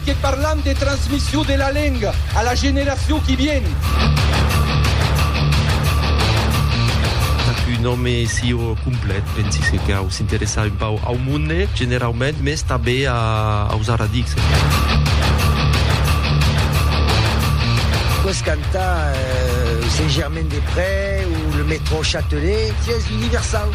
Que parlam de transmission de la lenga a la generacion qui vien. Tap un òme sieu complet, pensi se cau s'interessar un pauc au monde generaument, mès tanbe aus aradics. Qu'aus cantar Saint-Germain-des-Près ou le métro Châtelet, sies universau.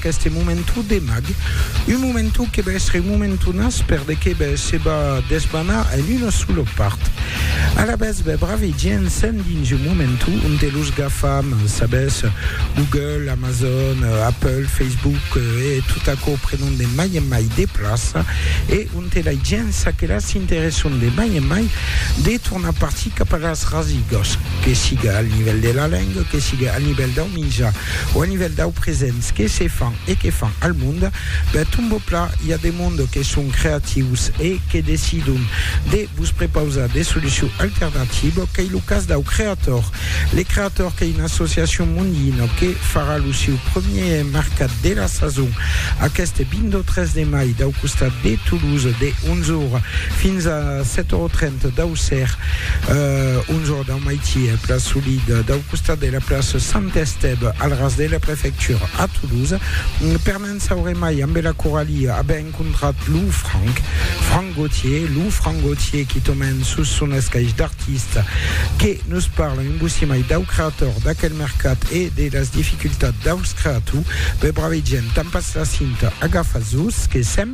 Qu'este momentu de mag, un momentu que va èstre un momentu nas per de que bè se va desbanar en una sola part. Alavetz bè brave gents sèn dins un momentu onte los gafam, sabètz, Google, Amazon, Apple, Facebook e tot aquò prenon de mai en mai de plaça e onte lai gents aquelas s'interesson de mai en mai de tornar partir cap a las rasigas, que siga al nivèl de la lenga, que siga al nivèl dau minjar. O a nivèl dau presents que se fan e que fan al monde, ben tombo pla, i a de monde que son creatius e que decidon de vos prepausar de solucion alternativa, qu'ei lo cas dau Creator. Le Creator qu'ei una associacion mondina que farà lo siu premièr mercat de la sason aqueste 23 de mai dau costat de Toulouse de 11 ora fins a 7 ora 30 dau ser, 11 ora dau Au Maitier, place Solide, dau costat de la place Sant Estève, al ras de la prefectura, a Toulouse, per ne'n saure mai ambe la Coralie a be encontrat lo Franck, Franck Gautier, lo Franck Gautier qui tomèn sus son escaish d'artiste, que nos parle un bocí mai dau creator, d'aquel mercat e de las dificultats daus creatou, be brave gent, tampatz la cinta, agafatz-vos, que sèm.